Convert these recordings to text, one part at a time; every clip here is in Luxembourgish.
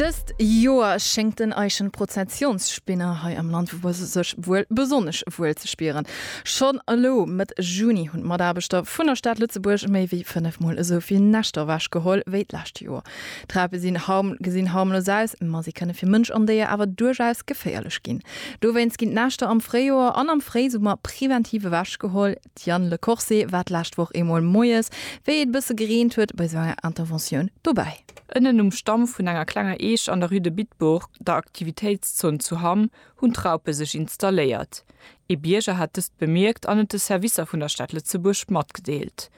Dëst Joer schéngt den Eischen Prozessionsspinner hei am Land sech wuel besonnesch wuel ze spieren. Schonn elo, Mëtt Juni, hunn d'Mataarbechter vun der Stad Lëtzebuerg méi wéi fënnefmol esou vill Näschter ewech geholl wéi d'lescht Joer. D'Trape sinn gesinn harmlos aus, ma si kënne fir Mënsch an Déier awer duerchaus geféierlech ginn. Dowéinst ginn d'Näschter am Fréijoer an am Fréisummer preventiv ewech geholl. D'Diane Lecorse war d'lescht Woch eemol moies, wéi et e bësse gereent huet, bei esou enger Interventioun dobäi. Ënnen um Stamm vun enger klenger Eech an der Rue de Bitburg, der Aktivitéitszon zu Hamm, hunn d'Raupe sech installéiert. Ee Bierger hat dëst bemierkt an et de Servicer vun der Stad Lëtzebuerg matgedeelt.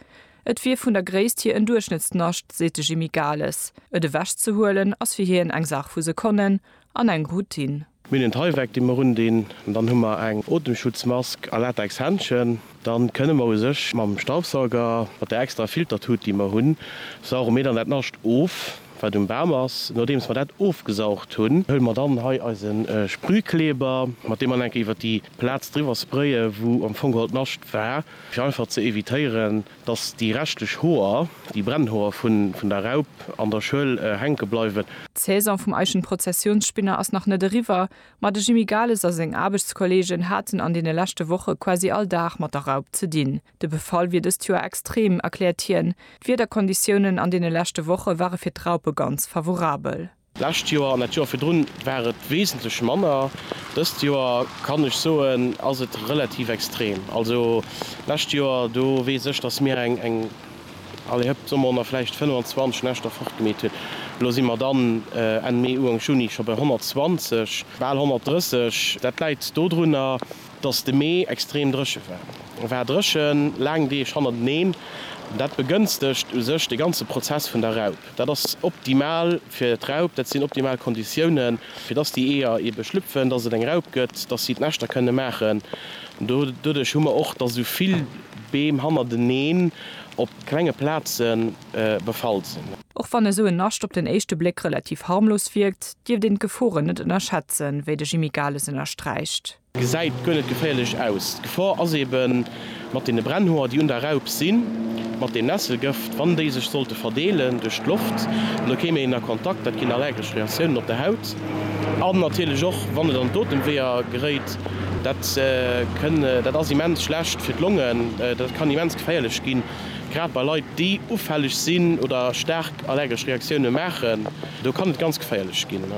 Et wier vun der Gréisst hier en Duerchschnëttsnascht, seet de Jimmy Gales. Et ewechzehuelen ass fir hien eng Saach vu Sekonnen an eng Routine. Mir hunn en Tyvek dee mer undinn, dann hu mer eng Otemschutzmask a Latexhändschen. Dann kënne mer u sech mam Staubsauger, mat der extra Filtertut déi mer hunn, sauge mir dann dat Nascht of wat um Bam ass. Nodeems mer dat ofgesaugt hunn, huele mer dann hei eise Sprühkleber, mat deem mer enke iwwer déi Plaz driwwer spraye wou am Fong geholl d'Nascht war, fir einfach ze evitéieren Dass déi reschtlech Hoer, déi Brennhoer vun der Raup an der Schuel hänke bleiwen. D'Saison vum Eichenprozessionsspinner ass nach net eriwwer, ma de Jimmy Gales a seng Aarbechtskollegen haten an deene leschte Woche quasi all Dag mat der Raup ze dinn. De Befall wier dëst Joer extrem, erkläert hien. D'Wiederkonditiounen an deene leschte Woche ware fir d'Raupe ganz favorabel. D'lescht Joer an dat Joer virdrun war et wesentlech manner. Dëst Joer kann ech soen, ass et relativ extrem. Also d'lescht Joer, do weess ech, datt mir eng, eng, allez hëpp, soe mer honnert, vläicht 25 Näschter fortgemeet hunn. Elo si mer dann Enn Mee, Uank Juni scho bei 120, bal 130. Dat läit dodrunner, datt de Mee extrem dréche war. E war dréchen, laang Deeg hannerteneen. Dat begënstegt u sech de ganze Prozess vun der Raup. Dat ass optimal fir d'Raup, dat sinn optimal Konditiounen, fir dass déi Eeër eebe schlüpfen, dass et eng Raup gëtt, dass si d'Näschter kënne maachen. Doduerch hu mer och, dass esou vill Beem hannerteneen op klenge Plaze befall sinn. Och wann esou en Nascht op den éischte Bléck relativ harmlos wierkt, dierft een d'Geforen net ënnerschätzen, wéi de Jimmy Gales ënnersträicht. Gesäit guer net geféierlech aus. D'Gefor ass eben mat deene Brennhoer, déi un der Raup sinn, mat deem Nesselgëft, wann déi sech sollte verdeelen duerch d'Loft, da kéim een a Kontakt, dat ginn allergesch Reaktiounen op der Haut. An natierlech och, wann et an d'Otemweeër geréit, dat kënn, dat ass immens schlecht fir d'Longen, dat kann immens geféierlech ginn, grad bei Leit, déi ufälleg sinn oder staark allergesch Reaktiounen maachen, do kann et ganz geféierlech ginn.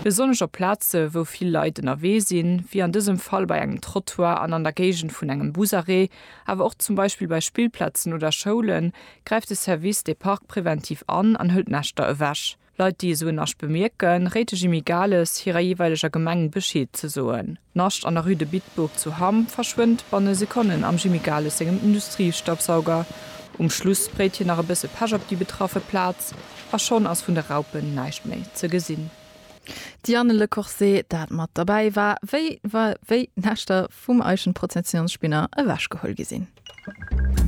Besonnesch op Plaze wou vill Leit ënnerwee sinn, wéi an dësem Fall bei engem Trottoir an an der Géigend vun engem Busarrêt, awer och zum Beispill bei Spillplazen oder Schoulen, gräift de Service des Parcs preventiv an an hëlt Näschter ewech. Leit, déi esou en Nasch bemierken, réit de Jimmy Gales hirer jeeweileger Gemeng Bescheed ze soen. Nascht an der Rue de Bitburg zu Hamm verschwënnt banne Sekonnen am Jimmy Gales sengem Industriestaubsauger. Um Schluss spréit hien nach e bësse Pech op déi betraffe Plaz a schonn ass vun de Raupen näischt méi ze gesinn. D'Diane Le Corset, dat mat derbäi war, wéi d'Näschter vum Eichenprozessionsspinner ewechgeholl gi sinn.